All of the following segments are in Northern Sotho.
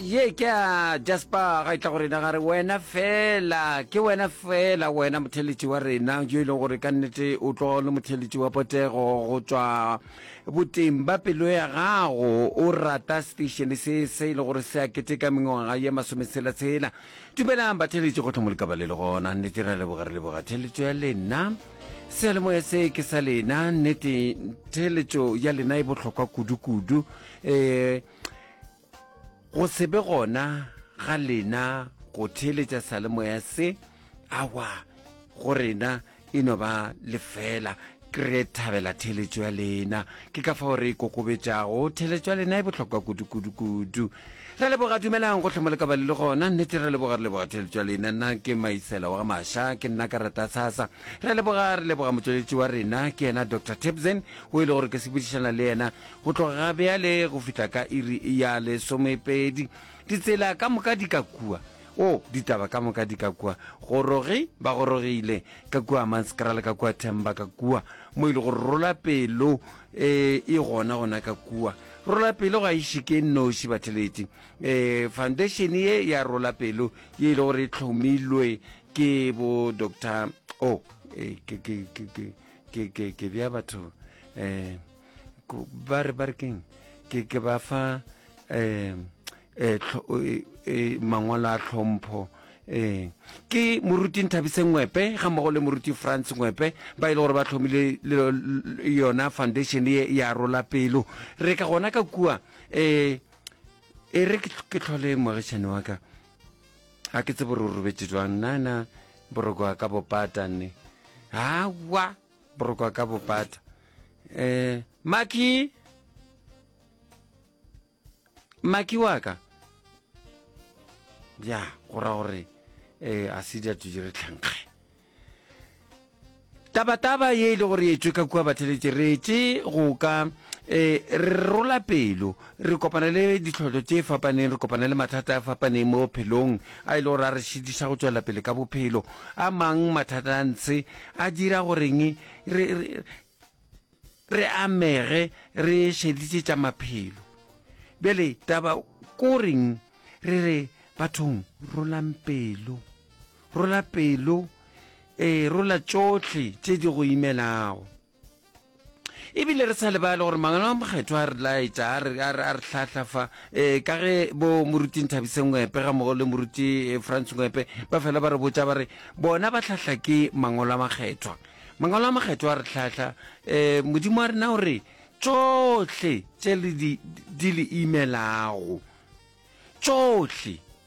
ye ke a jasper ga e tla go rena gare wena fela ke wena fela wena motheletši wa rena yo e leng gore ka nnete o tlo le motheletši wa potego go tswa boteng ba pelo ya gago o rata station se se e le gore se a keteka mengwaga ye masometshela-tshela dumelang batheletši go tlhomo lekaba le le gona nnete ra leboga re leboga theletšo ya lena sealemoya se ke sa lena nnete theletšo ya lena e bohlokwa kudu-kudu um go se be gona ga lena go theeletša salemoya se awa go rena e no ba lefela re thabela theeletšo ya lena ke ka fao re e kokobetšago theeletšo ya lena e bohlokwa kudu-kudu-kudu re leboga dumelang gohle mo le ka ba le le gona nnete re leboga re leboga theeletšo ya lena nna ke maisela wa ga maša ke nna ka rata sasa re leboga re leboga motšweletši wa rena ke yena dr tebsen o e le gore ke sepodišana le yena Go tloga ga bjale go fihla ka iri ya lesomepeedi, ditsela ka moka di ka kua. O, ditaba ka moka di ka kua. Gorogi, ba gorogile, ka kua Manskrale, ka kua Themba, ka kua. Mo ile gore rola pelo e, e gona gona ka kua. Rola pelo ga e šike noši batheleti. E, foundation ye ya rola pelo ye ile gore e tlhomilwe ke bo Doctor, o, e, ke, ke, ke, ke, ke, ke, ke bja batho, e. ba re ba re keng ke ke ba fa um mangwalo a tlhompho um ke moruti nthabise ngwepe ga mmogo le moruti france ngwepe ba e le gore ba tlhomile yona foundation ye ya rola pelo re ka gona ka kua um e re ke tlhole moagišane wa ka ga ke tsebo re o robetse jwang nana boroko a ka bopata nne awa Borokwa ka bopata. Eh, Maki! Maki wa ka! Ya, go ra gore, eh, a se dia tuje re tlhankge. Taba-taba ye e le gore e tšwe ka kua batheletše, re tše go ka eh, re rola pelo. Re kopana le ditlhohlo tše fapaneng, re kopana le mathata a fapaneng mo bophelong a e le gore a re šitiša go tšwela pele ka bophelo. A mang mathata a ntshe a dira goreng re, re, re amege re šeditše tša maphelo. Bjale taba ko reng re re bathong, rolang pelo, rola pelo, ee, rola tšohle tše di go imelago. e bile re sa lebale gore mangwalo a mokgetho a re laetša a re hlahla fa um ka ge bo moruti nthabise ngwepe ga mogo le moruti eh, france ngwepe ba fela ba re botša ba re bona ba hlahla ke mangwalo a makgethwa mangwalo a makgethwa a re hlahla um modimo wa rena o re tšohle tše di le imelago tšohle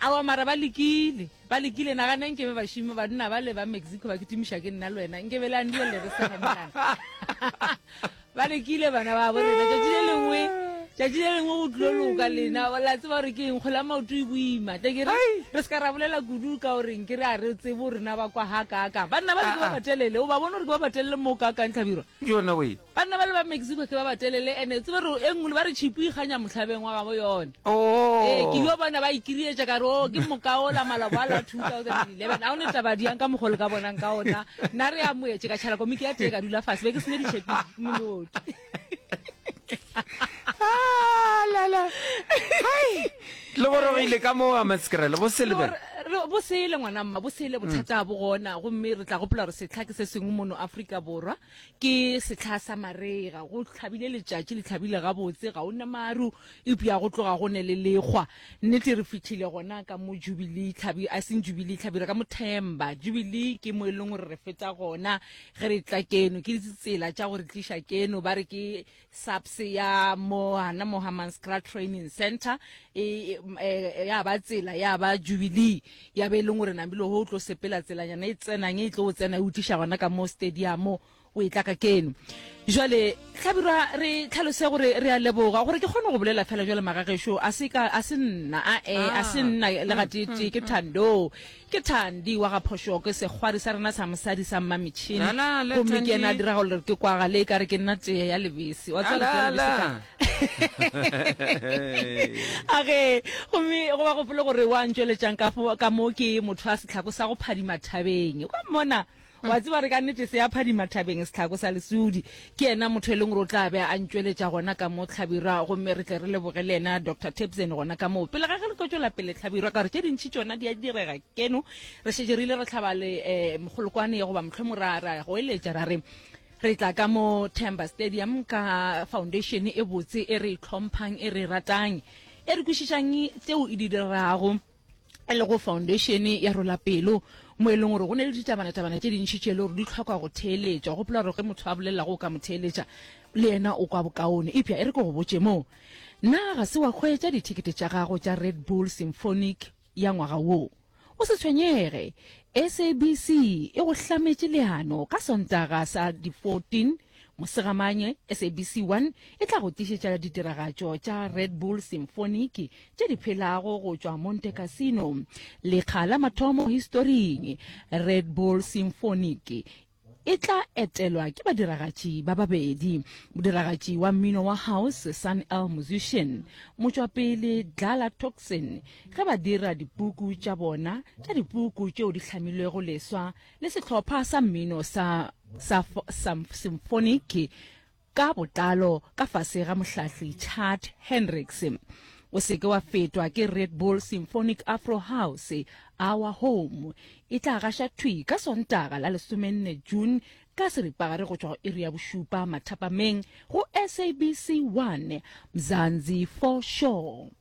Aowa, mara ba lekile. Ba lekile. Nagana nke be bašimo banna ba le ba Mexico ba kitimiša ke nna le wena. Nke be le andile le re segemelana. Ba lekile bana ba bo rena. Tšatši le lengwe, tšatši le lengwe go tlo loka lena. La tseba gore ke eng, kgole ya maoto e boima. Tle ke re, re se ka ra bolela kudu ka gore nke re a re tsebo rena ba kwa ha kaakang. Banna ba le ke ba batelele. O ba bone gore ke ba batelele mo kaakang, Tlhabirwa? Yona we. Banna bale ba Mexico ke ba batelele ene tsebe re e nngwe ba re tšhipu e ikganya mohlabeng wa gabo yone. Oh. Ee, ke yo bona ba ikirietša ka re o oh, ke mokaola maloboa la 2011. A o ne taba diang ka mogolo ka bonang ka ona. Nna re amoetše ka tšhala komiki ya tee ka dula fase be ke sene ditšhepi moloki. Ah, la la. Hai. Le gore go ile ka mo a maskrele bo sele bana. bo sele ngwana mma bo sele bothata bo gona gomme re tla gopola gore setlha ke se sengwe mono Afrika Borwa ke setlha sa marega go tlhabile letšatši le tlhabile gabotse ga o na maru eupša go tloga go ne le lekgwa nnete re fitlhile gona ka mo jubilee tlhabi a seng jubilee tlhabi re ka mothemba jubilee ke mo e leng gore re feta gona ge re tla keno ke ditsela tša gore tliša keno ba re ke SAPS ya mo hana mo Hammanskraal Training Centre e, e, e ya ba tsela ya ba Jubilee ya be e leng gore namile ho tlo sepela tselanyana e tsenang e tlo o tsena e utliša gona ka mo stadium o e tla ka keno jwale tlhabirwa re tlhalose gore re a leboga gore ke kgone go bolela fela jwale magagešo a se nna a e a se nna le gatete ke thando Ke Thandi wa ga Phošo, ke sekgwari sa rena sa mosadi sa mmametšhini. Gomme ke ena a dirago gore ke kwagale e ka re ke nna tee ya lebese. Wa tseba tee ya lebese ka? A ge, gomme go ba gopole gore wa ntšweletšang ka moo ke motho a setlhako sa go phadima thabeng. Wa mmona? Wa tseba re ka nnete se ya phadima thabeng setlhako sa lesudi. Ke yena motho e leng gore o tla be a ntšweletša gona ka mo Tlhabirwa gomme re tle re leboge le yena Doctor Tebsen gona ka moo. Pele ga ge re tlo tšwela pele Tlhabirwa ka gore tše dintši tšona di a direga keno re šetše re ile ra hlaba le eh, mogolokwane ye goba mohlomong ra ra goeletša ra re re tla ka mo Temba Stadium ka foundation e botse e re itlhomphang e re ratang e re kwešišang tseo e di dirago e lego foundatione ya rola pelo mo e leng gore go ne le ditabanatabana tše dintšhi tše e le gore di tlhoka go theeletšwa gopola gore ge motho a bolelelago o ka mo theeletša le yena o kwa bokaone epša e re ke go botše moo na ga se wa kgweetša dithekete tša gago tša red bull symphonic ya ngwaga woo o se tshwenyege sabc e go hlametše leano ka sontaga sa di-14 Mosegamanye, SABC 1 e tla go tlišetša ditiragatšo tša Red Bull Symphonic tše di phelago go tšwa Monte Cassino, lekga la mathomo historing. Red Bull Symphonic e tla etelwa ke badiragatši ba babedi, modiragatši wa mmino wa house Sun El Musician, motšwapele Dlala Thukzin ge ba dira dipuku tša bona tša dipuku tšeo di hlamilwego leswa le sehlopha sa mmino sa, sa, sa symphoniki ka botlalo ka fase ga mohlahli Chad Hendricks. O seke wa fetwa ke Red Bull Symphonic Afro House Our Home e tla gaša thwi ka Sontaga la lesomenne June ka seripagare go tšwa go iri ya bošupa mathapameng go SABC 1 Mzanzi for Sure.